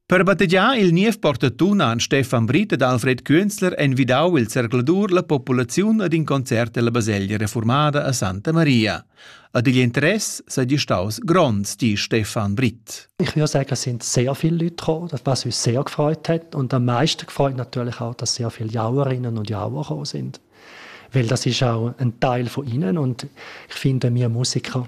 Per battegiar il niev portatun han Stefan Britt ed Alfred Künzler envidau il zercladur la populaziun ad in concert ella baselgia reformada a Santa Maria. Ad igl interess seigi staus gronds, di Stefan Britt. Ich würde sagen, es sind sehr viele Leute gekommen, was uns sehr gefreut hat. Und am meisten gefreut natürlich auch, dass sehr viele Jauerinnen und Jauer gekommen sind. Weil das ist auch ein Teil von ihnen und ich finde, wir Musiker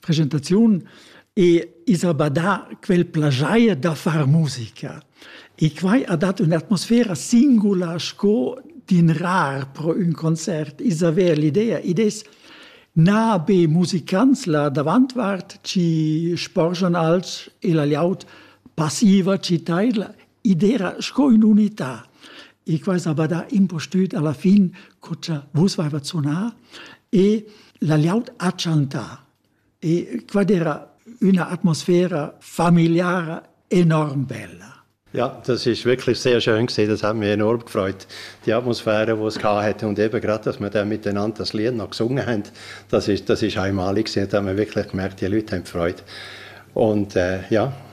presentaziun e is ha badà quel plagiair da far musica. E quai ha dat un'atmosfera singula sco d'in rar pro ün concert. Is haver l'idea, id es na be musicants la davantvart chi sporgian alch e la liaut passiva chi taidla, Id era sco ün'unità. E quai s'ava dà impustüt alla fin co cha vus vaiva sunà e la glieud ha chantà. E quai era üna atmosfera familiara enorm bella. Ja, das ist wirklich sehr schön gesehen, das hat mich enorm gefreut. Die Atmosphäre, die es hatte und eben gerade, dass wir dann miteinander das Lied noch gesungen haben, das ist, das ist einmalig gewesen, da haben wir wirklich gemerkt, die Leute haben Freude. Und äh, ja,